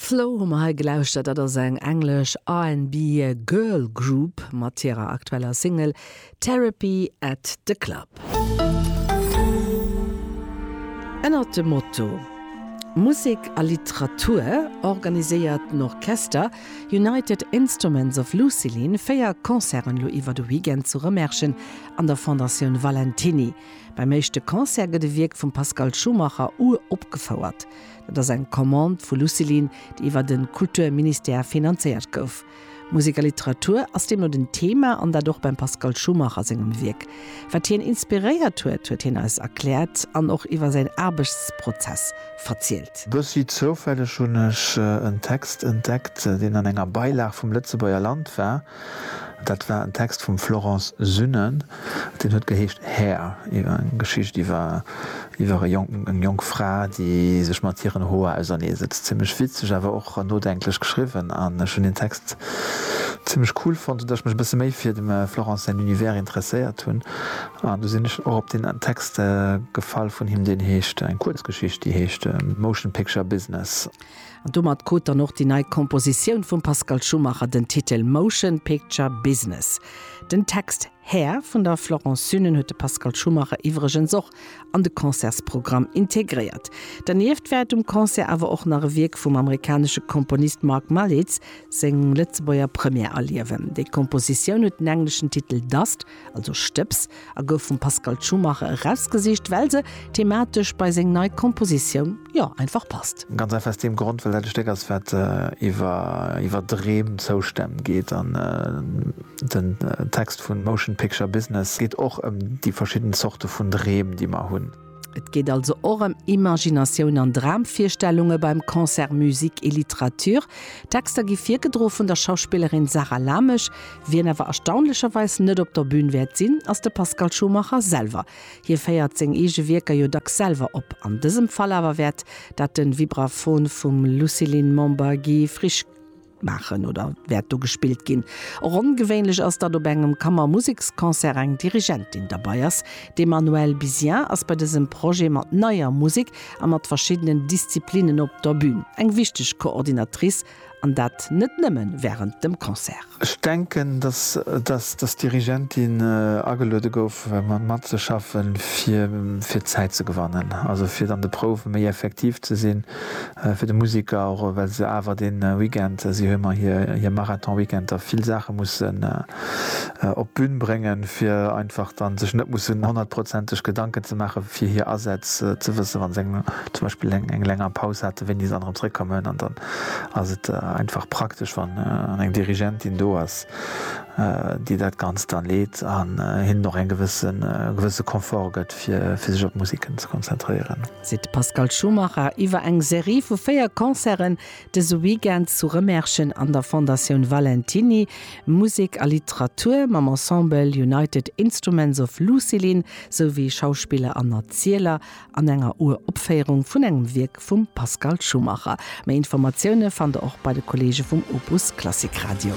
Flow hu mer hei gelauschtert. Dat ass eng englesch RnB Girl Group mat hirer aktueller Single Therapy at the Club. Ënnert dem Motto Musek a Literatur organiséiert den Orchester United Instruments of Lucilin véier Concerten elo iwwer de Weekend zu Rëmerschen an der Fondatioun Valentiny. Beim éischte Concert gëtt e Wierk vum Pascal Schumacher uropgefouert. Dat ass eng Commande vu Lucilin, déi iwwer de Kulturministère finanzéiert gouf. Musek a Literatur ass deemno den Thema an dat och beim Pascal Schumacher sengem Wierk. Wat hien inspiréiert huet, huet hien eis erkläert an och iwwer säin Aarbechtsprozess verzielt. Bëssi zoufälleg hunn ech en Text entdeckt, deen an enger Beilag vum Lëtzebuerger Land war. Dat war en Text vum Florence Synnen, deen huet geheescht Hair, iwwer eng Geschicht iwwer iwwer e jonken eng jonk Fra, déi sech mat hiren Hoer auserneesetzt. Zimmlech witzeg, awer och nodenklech geschriwwen an ech hunn deen Text zimmlech cool fonnt, sou datt ech mech e bësse méi fir dem Florence säin Univers interesséiert hunn an du sinn ech och op deen Text gefall vun him, deen heescht, eng Kuerzgeschicht, déi heescht Motion Picture Business. An domat krut dann och déi nei Kompositioun vum Pascal Schumacher den Titel Motion Picture Business. Den Text Hair vun der Florence Sünen huet de Pascal Schumacher iwwregens och an de Concertsprogramm integréiert. Dernieft wäert um Concert awer och nach e Wierk vum amerikanesche Komponist Mark Malitz seng Lëtzebuerger Première erliewen. Déi Kompositioun huet den engleschen Titel Dust also Stëbs, a gouf vum Pascal Tschumacher erausgesicht, well se thematesch bei seng nei Kompositioun, jo, einfach passt. Ganz einfach aus deem Grond, well dat e Stéck ass, wat iwwer, iwwer Dreem, Zoustänn geet. An den Text vu Motion Picture Business geet och ëm déi verschidden Zorte vun Dreem, déi mer hunn. Et geet also och ëm Imaginatioun an Dramvirstellunge beim Concert Musique et Littérature. D'Texter gi virgedro vun der Schauspillerin Sarah Lamesch. Wien awer erstaunlecherweis net op der Bün wäert sinn, ass de Pascal Schumacher selwer. Hie féiert seng eege Wierker jo dacks selwer op. An dësem Fall awer wäert dat de Vibraphon vum Luciline Monbargis-Frisch. maachen oder wäert do gespillt ginn. Och ongewéinlech ass, datt op engem Kammermuseksconcert eng Dirigentin derbei ass. D'Emmanuelle Bizien ass bei dësem Projet mat neier Musek a mat verschiddenen Disziplinnen op der Bün, eng wichteg Coordinatrice, an dat net nëmme wärend dem Concert. Ech denken, datt dës Dirigentin ageluede gouf, matzeschaffen, fir Zäit ze gewannen, also fir an de Prouwe méi effektiv ze sinn, fir de Museker, och well se awer dee Weekend, si hu mar hir Marathon-Weekend, da vill Saache mussen op d'Bün bréngen, fir einfach da sech net mussen honnertprozenteg Gedanken ze maache fir hir Asätz, ze wësse wa se zum Beispill eng länger Paus haten, wéini se dann erëm zréckkommen. An dann ass et einfach praktesch, wann eng Dirigentin do ass, déi dat Ganzt da leet an hinnen och e gewësse Confort gëtt, fir sech op d'Musiken ze konzentréieren. seet de Pascal Schumacher iwwer eng Serie vu véier Concerten dëse Weekend zu Remerschen an der Fondatioun Valentiny. Musek a Literatur mam Ensemble United Instruments of Lucilin, sou wéi Schauspiller an Erzieler an enger Uropféierung vun engem Wierk vum Pascal Schumacher. Méi Informatioune fannt der och bei de Kolleege vum Opus Klassik Radio.